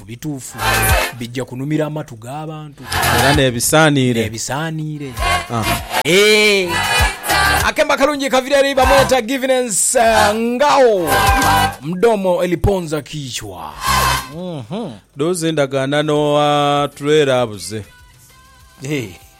Mu bituufu, bija kunumira amatu g'abantu. Era n'ebisaaniire. N'ebisaaniire. Eeh. Akembo akalungi kavira eri bamweta Giviness eh, Ngao. Mdomo eliponza kichwa. Doozi endagaanano atulwera abuze. Eeh.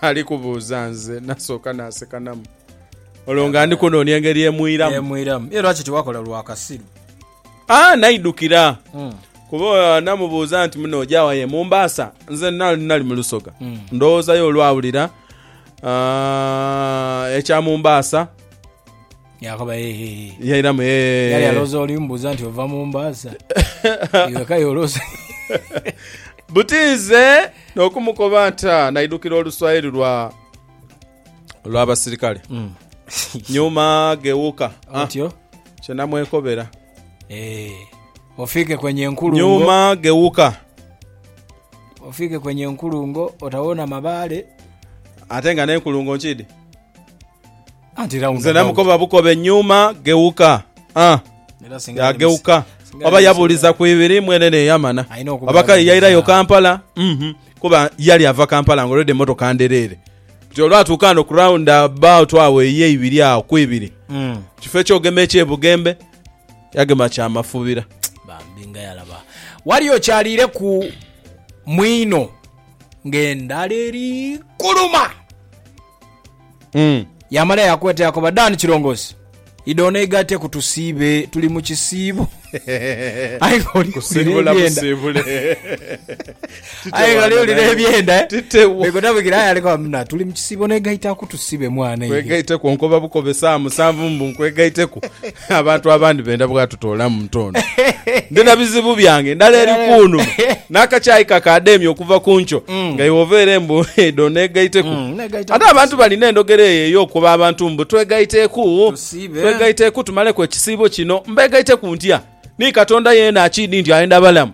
Ali kubuuza nze nasooka nasekanamu. Olwo nga ndi kunoonia engeri emwiramu. Emwiramu. Ye lwaki tiwakola lwa kasiru? Ah, naidhukira. Mm. Kuba namubuuza nti muno ojawa ye Mombasa? Nze na- nali mu Lusoga. Mm. Ndowoozayo olwawulira ah, ekya Mombasa Yaakoba, Heehehe. Yairamu, Heehehe. Yali alowooza oli mbuuza nti ova mu mbaasa. Iwe kale olowooza. Buti nze n'okumukoba nta naidukira oluswahili lwa lw'abasirikale Mm. nyuma gh'ewuka ah, Otyo? kye namwekobera Eh, ofiike kwenye nkulungo. nyuma gh'ewuka Ofiike kwenye nkulungo, otawona mabale. ate nga n'enkulungo nkidi Nze namukoba bukobe nyuma gheuka. Ah! Yagheuka. Oba yabuuliza ku ibiri mwene n'eyamana. Oba kale yairayo Kampala. Uhhm. Kuba yali ava Kampala nga already emmotoka ndhereere. Kati olwatuuka ghano ku round about agho ey'eibiri agho ku ibiri, kifo eky'ogema eky'e Bugembe, yagema kya Mafubira. Bambi nga yalaba. Wali okyaliireku mwino ng'endhala eri kuluma. Yaamala yaakweta yaakoba, Dan Kirongozi, idha oneigaiteku tusiibe, tuli mu kisiibo. Aye ghale owulira ebyenda. Bwegota bwikira aye ali koba, tuli mu kisiibo oneigaitaku tusiibe mwana. Nkwegaiteku onkoba bukobe saa musanvu mbu nkwegaiteku. Abantu abandi benda bwatutoolamu ntondo. Ndi na bizibu byange ndala eri kunuma, n'akakyayi kakaademya okuva ku nkyo, nga iwe oveere mbu idho neegaiteku. Ate abantu balina endhogera eyo ey'okukoba abantu mbu twegaiteku, twegaiteku tumaleku ekisiibo kino. Mbeegaiteku ntya? Ni Katonda yeena akiidhi nti ayenda balamu?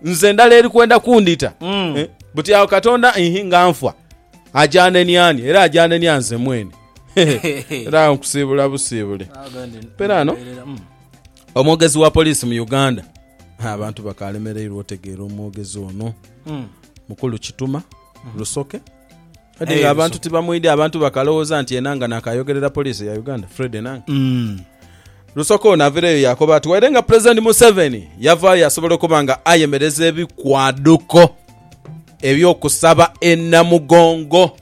Nze ndala eri kwenda kundhita. Buti agho Katonda inhi nga nfa, ajanenia ani? Era ajanenia nze mwene. era awo nkusiibula busiibule Perano. Mm. omwogezi wa poliisi mu uganda Ha, abantu bakalemereirwa otegeera omwogezi ono Mm. mukulu kituma lusoke kati Eh, nga abantu Lusoke. tibamwidya abantu bakalowooza nti ena nga nakayogerera poliisi ya uganda fred enanga Mm. lusoka ono avireyo yakoba ati waire nga pulezidenti museveni yavaayo yasobola okuba nga ayemereza ebikwaduko ebyokusaba enamugongo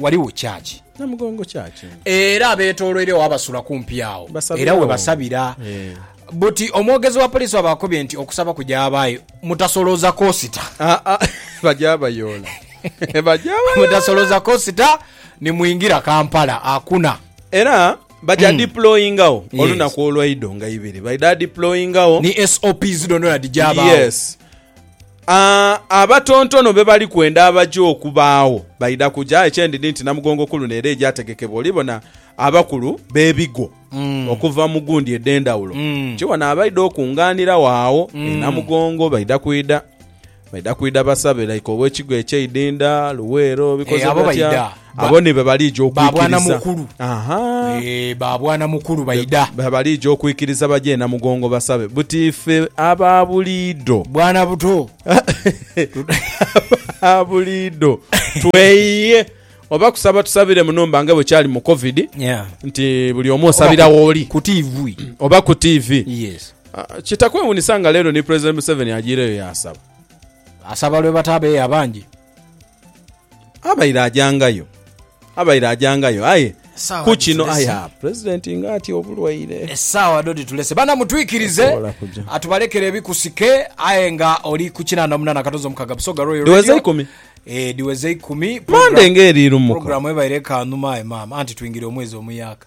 Ghaligho kyaki. Namugongo kyaki. Era abeetooloiregho oba basula kumpi agho era we basabira. Buti omwogezi wa poliisi bw'abakobye nti okusaba kugyabaayo, mutasolooza koosita. Aa bagyabayoola. Bagyabayoola. Mutasolooza koosita ni mwingira Kampala. Hakuna. Era bagya diployingagho olunaku olwa idho nga ibiri. Baidha diployingagho. Ni SOPs dhoondhoona dhigyabaawo. Yes. Aa, abatontono be bali kwenda abaja okubaagho baidha kuja. Eky'endhidhi nti Namugongo ku luno era egyategekebwa oli bona abakulu b'ebigo okuva mu gundi edh'endhawulo ki wano abaidha okungaaniragho agho e Namugongo. Baidha kwidha baidha kwidha basabe like ow'ekigo eky'eidhindha, Luweero, bikoze Eh, abo batya? baidha. Abo ni be balija okwikiriza. Ba bwana mukulu. Eeh, ba bwana mukulu baidha. Be balija okwikiriza baje e Namugongo basabe buti ife aba buliidho. Bwana buto. Aba buliidho tweyiye oba kusaba tusabire mu numba nga bwe kyali mu Covid nti buli omu osabira wooli. Ku TV. Oba ku TV. Yes. Kitakwewunisa nga leero ni President Museveni ajiireyo yaasaba. Asaba lwe batabeeyo abangi. Abaire ajangayo, abaire ajangayo aye Esaawa ku kino dhitulese. aya pulezidenti nga atya obulwaire. esaawa dho dhitulese bana mutwikirize Tasobola kuja. atubalekere ebikusike aye nga oli ku kinana munana katozo mukaga busoga royal Dhiweze Radio. ikumi. Eh, dhiweze ikumi Mande nga eri lumuka. programu ebaire ekanhuma aye maama anti twingire omwezi omuyaka